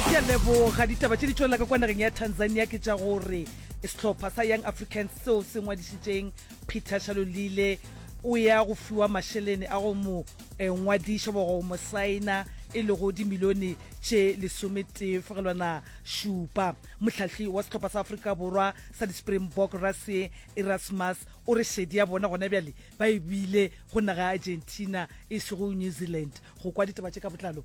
Ke a leboga. Ditaba tše di tšwelela ka kwa nageng ya Tanzania ke tša gore sehlopha sa Young Africans seo se ngwadišitšeng Peter Shalulile o ya go fiwa mašelene a go mo eh, ngwadiša goba go mo saena e lego dimilione tše lesometee fegelwana šupa. Mohlahli wa sehlopha sa Afrika Borwa sa di-Springbok Rassie Erasmus o re šedi ya bona gona bjale ba e bile go naga ya Argentina e sego New Zealand go kwa ditaba tše ka botlalo.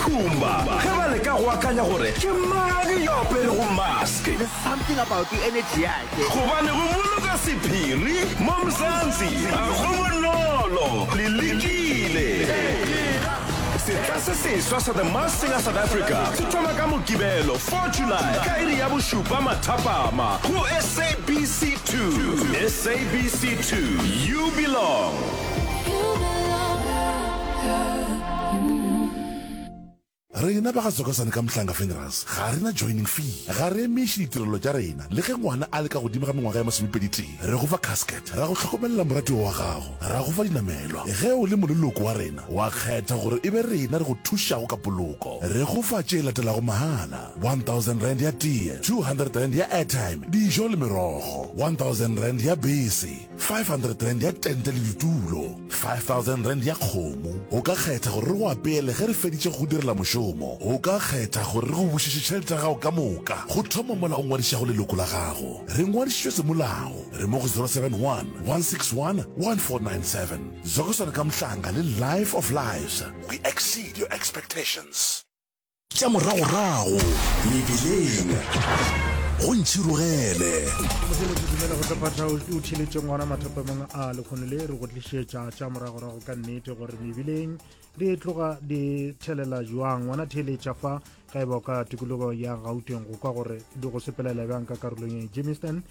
Khumba ge ba leka go akanya gore ke mang yo aperego mask. There's something about the energy yake. Gobane go boloka sephiri mo Mzansi ga go bonolo. Le lekile? Setla se seswa sa The Masked Singer South Africa se thoma ka Mokibelo 4 July ka iri ya bošupa mathapama go SABC 2. SABC 2, you belong. Rena ba ga Zokosane ka Mhlanga Funerals ga re na joining fee. Ga re emiše ditirelo tša rena le ge ngwana a le ka godimo ga mengwaga ya masomepedi-tee. Re go fa casket, ra go hlokomelela moratiwa wa gago, ra go fa dinamelwa ge o le moleloko wa rena wa kgetha gore e be rena re go thušago ka poloko. Re go fa tše latelago mahala, R1,000 ya tee, R200 ya airtime, dijo le merogo, R1,000 ya bese, 500 rand ya tente le ditulo 5000 rand ya kgomo o ka kgetha gore re go apeele ge re feditše go direla mošomo o ka kgetha gore re go bušetše tšhelete ya gago ka moka go thoma mola o ngwadišago leloko la gago re ngwadišitšwe semolao re mo go 071 161 1497 zokoswana ka mohlanga le life of lives we exceed your expectations Tša moragorago mebeleng go ntšhirogele. Modimo ke dumela go tlophahla o thiletše ngwana mathapamong a lekgono le re go tlišetša tša moragorago ka nnete gore mebileng di tloga di thelela jwang ngwana theeletša fa ga e ba ka tikologo ya gauteng go kwa gore di go sepelela bjang ka karolong ya jameson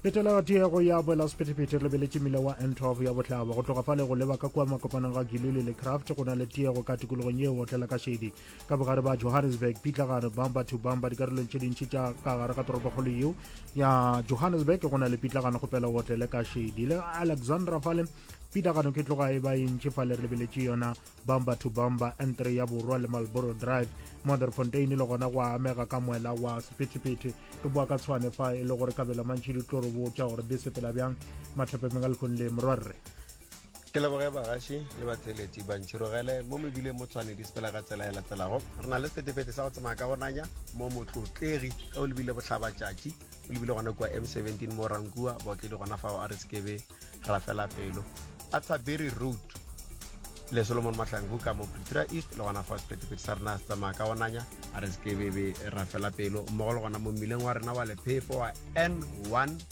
letela tiego ya boela sephethephethe lebeletše mmila wa n 12 ya bohlaba go tloga fa le go leba ka kua makopanong ga gilule le craft go na le tiego ka tikologong ye otlela ka šedi ka bogare ba johannesburg pitlagare bamba to bamba dikarolong tše dintši tša ka gare ga toropokgolo yeo ya johannesburg go na le pitlagano go pela wotlele ka shedi le alexandra fale pitlagano ke tloga e ba e ntši fa le re lebeletše yona bamba to bamba n3 ya borwa le malboro drive mother fontaine le gona go amega ka moela wa sephetephete re boa ka tshwane fa e le gore kabelo mantši di tlo re botša gore di sepela bjang matlhapemeng a lekgong le morwarre ke leboge bagaši le batheletši bantšhirogele mo mebile mo tshwane di sepela ka tsela e latelago re na le setefete sa go tsamaya ka gonanya mo motlotlegi ge o lebile botlhabatšatši o lebile gona kua m 17 mo rankua baotledi gona fao a re sekebe ra fela pelo athabiri road le solomon mahlangu ka mo pretoria east le gona fao setefete sa rena se tsamaya ka gonanya a re sekebebe ra fela pelo mmogo le gona mo mmileng wa rena wa lephefo wa n 1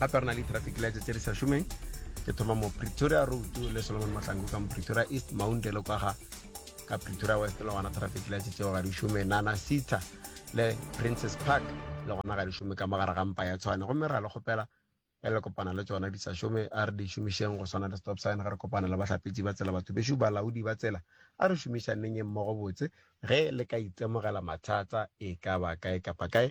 gape re na le traffic lights tse di sa šomeng ke thoma mo pretoria road le solomon matlango ka mo pretoria east mounte le kwaga ka pretoria west le gona traffic lights tseo ga di šome nana sita le princess park le gona ga di šome ka mogare ga mpa ya tshwane gomme ra le kgopela e le kopana le tsona di sa šome a re di šomišeng go swana le stop sign ge re kopana le bahlapetsi ba tsela batho bešo balaodi ba tsela a re šomišaneng e mmogo botse ge le ka itemogela mathata e ka ba kae kapa kae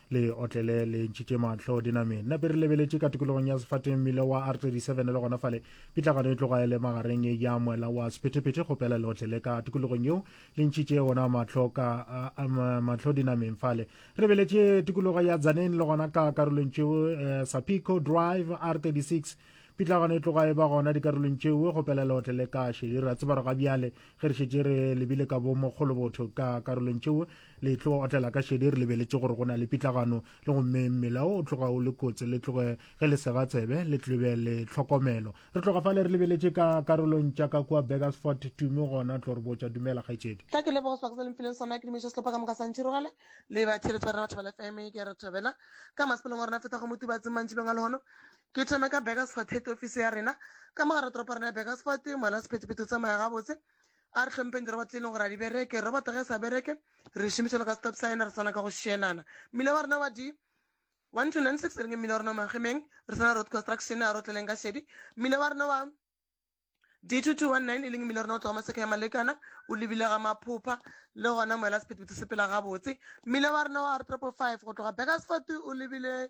le otlele le ntšhitše mahlo diname nna pe re lebeletše ka tikologong ya sefateng mmile wa r 37 le gona fale pitlagano e tloga e le magareng ya moela wa sephetephete go pela le otlele ka tikologong yeo le ntšhitše gona mahlo ka mahlo dinameng fale re lebeletše tikologo ya tsaneng le gona ka karolong tšeo eh, sapico drive r 36 pitlagano e tloga e ba gona dikarolong tšeo go pela le otlele ka šedi ra tseba re ga bjale ge re šetše re lebile ka bo mogolobotho ka karolong tšeo le tlo otlela ka šedi re lebeletše gore go na le pitlagano le gomme mmele o tloga o le kotsi le tloge ge le sega tsebe le tlobe le tlhokomelo re tloga fale re lebeletše ka karolong tša ka kua begersfort tume gona tlo re botša dumela kgaetšedi ka ke lebogo sebaka se le mphileng sona ke dumediša sehlopha ka moka sa ntšhirogela le ba theletso ya rena batho ba le fm ke ya re thabela ka masepelong wa rena feta go motubatseng mantšibeng a lehono ke thome ka begersfort head office ya rena ka mogare toropo rena ya begersfort moela sephetephethe o tsamaya gabotse A re hlompheng diroba tse e leng gore a di bereke. Robot ge e sa bereke, re e šomiša le ka stop sign, re swana ka go šielana. Mmila wa rena wa di 1296 e reng mmila wa rena wa Magemeng, re swana road construction, a re otleleng ka šedi. Mmila wa rena wa D2219 e leng mmila wa rena o tloga maseka ya Malekana, o lebile ga Maphopha, le gona moela sephethephethe se pela gabotse. Mmila wa rena wa R555 go tloga Bakersford o lebile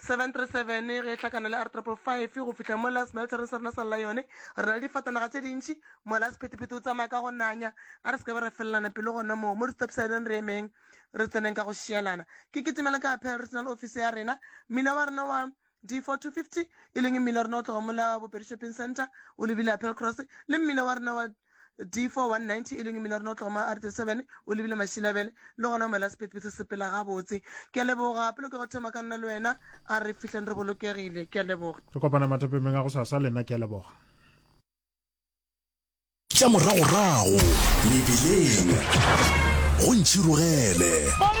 737 ge e hlakana le r555 go fihla mola smeltering sa rena sa lla yone re na le difatanaga tše dintši mola sephethephethe o tsamaya ka go nanya a re se ke ba re felelana pelo gona moo mo di-stopsideng re emeng re tseneng ka go šielana ke ketemela ka apel regional office ya rena mmila wa rena wa d4250 e leng mmila wa rena o tloga mola bopedi shopping center o lebile apel cross le mmila wa rena wa D419 e leng Miller Notloma a re the seven o lebile Mašilabele le gona o mela sephetho se sepela gabotse. Ke a leboga. Pele ke go thoma ka nna le wena a re fihleng re bolokegile. Ke a leboga. Re kopana mathapemeng a go sasa le nna ke a leboga. Tša moragorago mebileng go ntšhirogele.